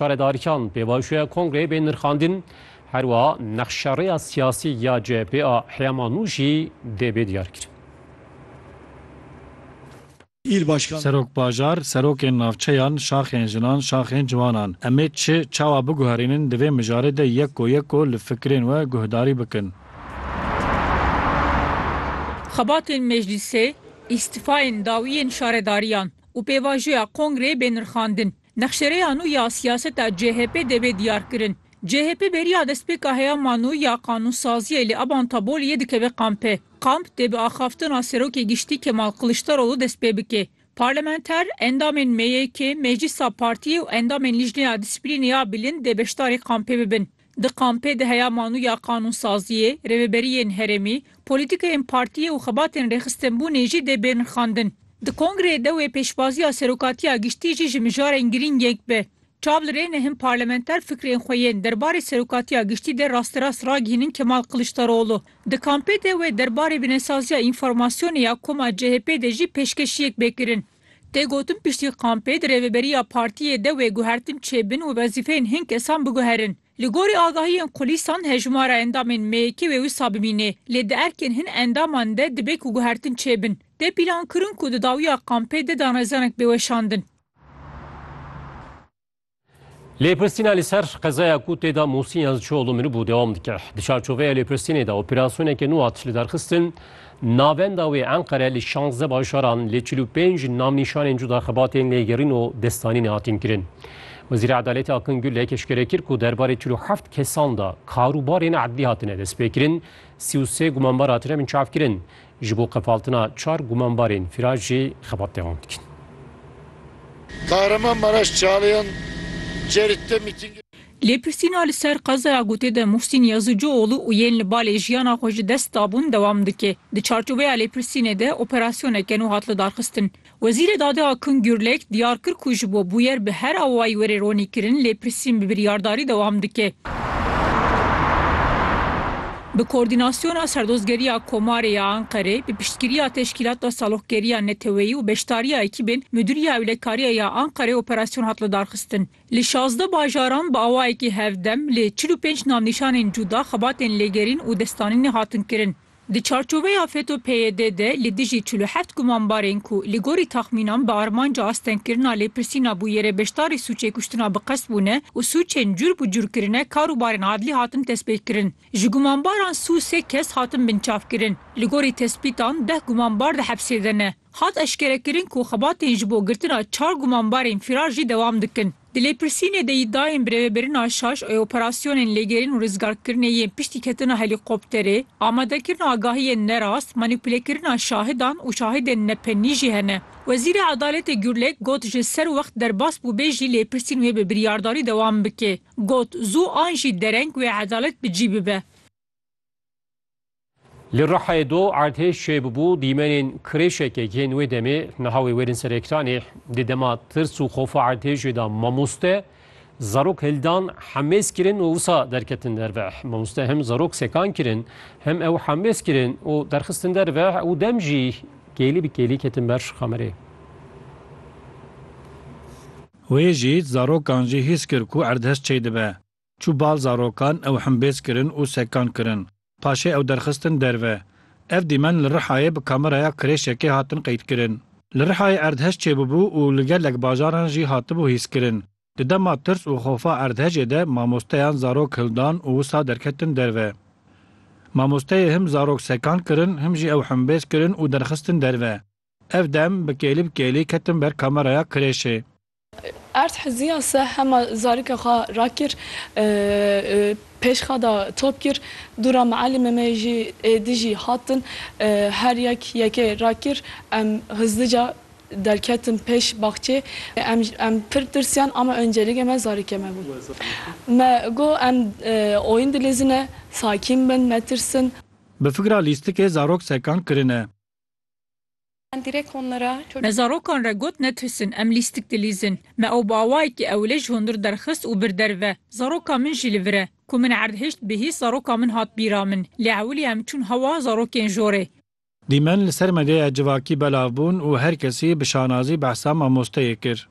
Perêdarîkan pê vajoya kongreyê bên nirxandin, her wiha nexşa rêya siyasî ya CHP a heyama nû jî dê bê diyarkirin. Serok Bajar, Serokên navçeyan, şaxên jinan, şaxên ciwanan em ê çi, çawa biguherînin di vê mijarê de yeko yeko li fikirên we guhdarî bikin. Xebatên meclîsê, îstîfayên dawiyên şaredariyan û pêvajoya kongreyê bên nirxandin. Nexşereya nû ya siyaseta CHP'ê de bê diyarkirin. CHP beriya destpêka heyama nû ya qanûnsaziyê li Aban Taboliyê dikeve kampê. Kamp dê bi axaftina Serokê Giştî Kemal Kiliçdaroglu dest pê bike. Parlamenter, endamên MYK'ê, Meclîsa Partiyê û endamên Lijneya Dîsiplînê ya Bilind dê beşdarî kampê bibin. Di kampê de heya manûya qanûnsaziyê, rêveberiyên herêmî, polîtîkeyên partiyê û xebatên rêxistinbûnê jî dê bên rixandin. Di kongreyê de wê pêşbaziya Serokatiya Giştî jî ji mijarên girîng yek be. Çav li rê ne hin parlamenter fikrên xwe yên derbarê Serokatiya Giştî de rasterast ragihînin Kemal Kiliçdaroglu. Di kampê de wê derbarê binesaziya înformasyonê ya koma CHP'ê de jî pêşkêşiyek bê kirin. Tê gotin piştî kampê di rêveberiya partiyê de wê guhertin çêbin û wezîfeyên hin kesan biguherin. Li gorî agahiyên kulîsan hejmara endamên MYK'ê wê wisa bimînê, lê di erkên hin endaman de dibe ku guhertin çêbin. Tê pîlankirin ku di dawiya kampê de danezanek bê weşandin. Lêpirsîna li ser qezaya ku tê de Musîn Yazıcıoğlu miribû dewam dike. Di çarçoveya lêpirsînê de operasyoneke nû hat lidarxistin. Navenda wê Enqere li şanzde bajaran li çil û pênc navnîşanên cuda xebatên lêgerîn û destanînê hatin kirin. Wezîra Edaletê Akın Gürlek eşkere kir ku derbarê çil û heft kesan de karûbarên edlî hatine destpêkirin, sî û sê gumanbar hatine binçavkirin. Ji bo qefaltina çar gumanbarên firaş jî xebat devam dikin. Kahramanmaraş Çalayan Cerit'te mîtîngê. Lêpirsîna li ser qezaya Gutê de Muhsîn Yazıcıoğlu û yên li balê jiyana xwe ji dest dabûn dewam dike. Di çarçoveya lêpirsînê de operasyoneke nû hat lidarxistin. Wezîrê Dadê Akın Gürlek, diyar kir ku ji bo bûyer bi her awayî were ronîkirin lê pirsîn bi biryardarî dewam dike. Bi koordînasyona Serdozgeriya Komarê ya Anqerê, bi piştgiriya Teşkîlata Saloqgeriya Neteweyî û beşdariya ekîbên Mudîriya Ewlekariya ya Anqerê operasyon hat lidarxistin. Li şazdeh bajaran bi awayekî hevdem lê çil û pênc navnîşanên cuda xebatên lêgerîn û destanînê hatin kirin. Di çarçoveya FETÖ-PYD de li dijî çil û heft gumanbarên ku li gorî taxmînan bi armanca astengkirina lêpirsîna bûyerê beşdarî sûcê kuştina bi qest bûne û sûcên cûr bi cûr kirine karûbarên adlî hatin destpêkirin. Ji gumanbaran sû sê kes hatin binçavkirin. Li gorî tespîtan deh gumanbar di hepsê de ne. Hat eşkerekirin ku xebatên ji bo girtina çar gumanbarên fîrar jî dewam dikin. Di lêpirsînê de yî dayên birêvebirina şaş ê operasyonên lêgerîn û rizgarkirinê yên piştî ketina helîkopterê, amadekirina agahiyên nerast, manîpulekirina şahidan û şahidên nepenî jî hene. Wezîrê Edaletê Gurlek got ji ser wext derbas bûbê jî lêpirsîn wê bi biryardarî dewam bike. Got, Zû an jî dereng wê edalet bi cî bibe. Li Rihayê du erdhêj çêbûbû, dîmenên kirêşekek yên wê demê niha wê wêrin ser ekranê. Di dema tirs û xofa erdhêjê de mamoste, zarok hildan, hemêz kirin û wisa derketin derve. Mamoste hem zarok sekan kirin, hem ew hemêz kirin û derxistin derve û dem jî kêlî bi kêlî ketin ber kamerê. Wê jî zarokan jî hîs kir ku erdhej çêdibe. Çû bal zarokan, ew himbêz kirin û sekan kirin. Paşê ew derxistin derve. Ev dîmen li Rihayê bi kameraya kirêşekê hatin qeydkirin. Li Rihayê erdhej çêbûbû û li gelek bajaran jî hatibû hîskirin. Di dema tirs û xofa erdhejê de mamosteyan zarok hildan û wisa derketin derve. Mamosteyê him zarok sekan kirin him jî ew himbêz kirin û derxistin derve. Ev dem bi kêlî bi kêlî ketin ber kameraya kirêşê. Erd Hizîya se hema zarika xwe rakir, pêşxada top kir, du ra mialîmê me jî ê dijî hatin, her yek yekê rakir, em hizdica derketin pêş baxçê, em pir tirsiyan ama oncêlîgê me zarikê me bû. Me got em oyun dilêzine, sakîn bin, netirsin. Bi fikra lîstikê zarok sekan kirine. Me zarokan re got netirsin, em lîstik dilîzin. Me ew bi awayekî ewilê ji hundir derxist û bir derve. Zaroka min jî li vir e. Ku min erd hişt bihîst zaroka min hat bîra min. Lê ewilî em çûn hewa zarokên jorê. Dîmen li ser medyaya civakî belav bûn û her kesî bi şanazî behsa mamosteyê kir.